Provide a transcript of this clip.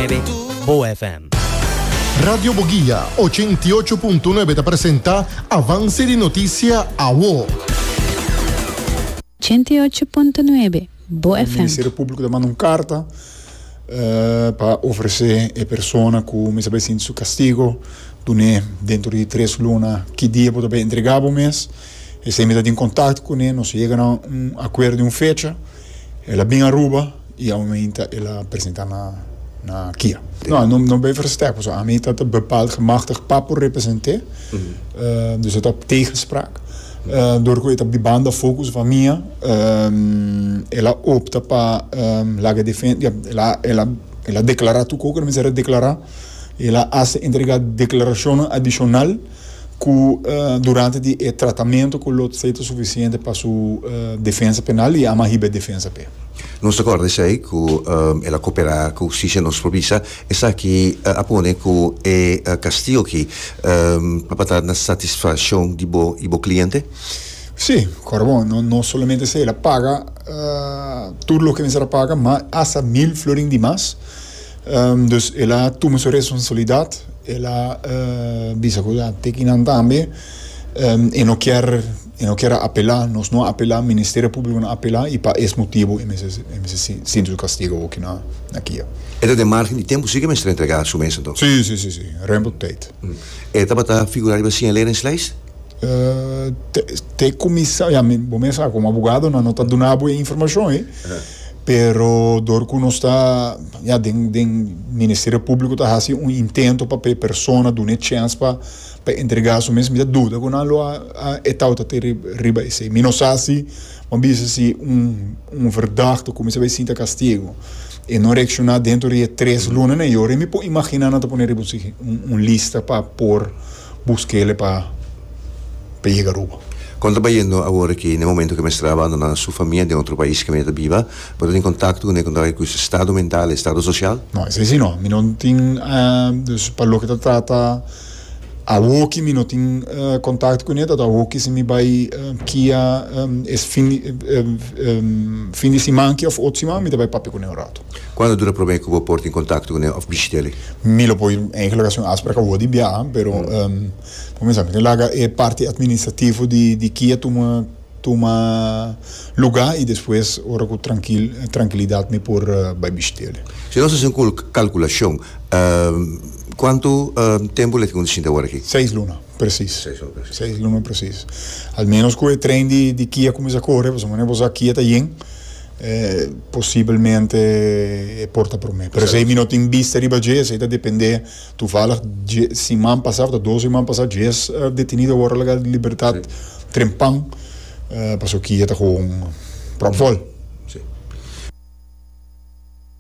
Ebe Bo FM. Radio Boguia ocho i ocho punto nuebe ta presenta Avance di Noticia Awo. Ochenta i ocho punto nuebe, Bo FM. Ministerio Público ta manda un carta pa ofrece e persona cu mester bay sinti su castigo dune dentro di tres luna ki dia bo ta bay entrega bo mes. Esey mi ta tin contacto cune, nos yega na un acuerdo di un fecha. El a bin Aruba y aumenta el a presenta na na Kia. No, no, no ben versterk, paso ami ta ta bepaald gemachtigd pa por represente, dus e ta op tegenspraak. Door ku e ta di banda focus van mia, el a opta pa laga defen, ja, el a, el a, el a declara tu cu cu ta mester a declara, el a hace entrega declaracionnan adicional, ku durante di e tratamentu ku lo tsei ta sufisiente pa su defensa penal i ama hiba e defensa p'e. Nos ta kòrda esei ku el a koperá ku hustisia. Nos por bisa esaki a pone ku e kastigo aki papia ta na satisfakshon di bo i bo kliente? Sí, kòrda bon, no solamente esei, el a paga tur loke mester a paga, ma asta mil florin di mas. Dus el a tuma su responsabilidat, el a bisa ku a tiki nan tambe, e no kier, e no kier apelá, nos no a apelá, Ministerio Públiko no a apelá, i pa es motibu e mester, e mester sinti su kastigu aki na kia. E ta den margen di tempu si ku e mester entregá su mes anto? Sí, sí, sí, sí, rempo di teit. E tabata figurá riba signaleringslijst? Te, te kuminsá, ya, bo mes sa ku, bo abogado nan no ta duna bo e informashon ei. Pero dor cu nos ta, ya, den, den Ministerio Publico ta haci un intento pa e persona duna e chens pa, pa entrega su mes, mi ta duda cu nan lo a, a etauta te ri, riba esey. Mi no sa si, bo a bisa si un, un verdad ta cuminsa bay sinta castigo. E no reacciona dentro di e tres lunanan y ora mi por imagina nan ta pone riba un, un lista pa por. Bus kele pa pa yega Aruba. Kon ta bayendo awor ki n'e momento ke mester a abandona su famia den otro pais ke mi ta biba? Bo ta tin kontakto ku ne kon ta bay ku su estado mental i estado sosial? No, esei si no. Mi no tin, dus pa loke ta trata awor ki mi no tin kontakto ku ne ta awor ki si mi bay kia es fin di siman ki of otro siman mi ta bay papia ku ne un rato. Cuando dura prome cu bo por tin contacto cu nan of bishita eli? Mi lo por eigenlijk haci un afspraak awo di biaha, pero pa comenzá mi tin laga e parti administrativo di kia tuma tuma lugá i despues ora cu trankil trankilidad mi por bai bishit'el. Si nos haci un cul calculacion, cuantu tempu lek cu bo ta shinta awor aki? Seis luna precies. Seis luna precies. Seis luna precies. Al menos cu e tren di di kia cuminsa corre, pasobra bo sa kia ta yen. Posibelmente e por ta prome. Pero esei mi no tin bista riba dje, esei ta depende. Tuvalig dje siman pasa, tabata dos siman pasa, djes detenido a wòrdu laga di libertat trempan, pasobra ki e ta gewoon pròp vòl.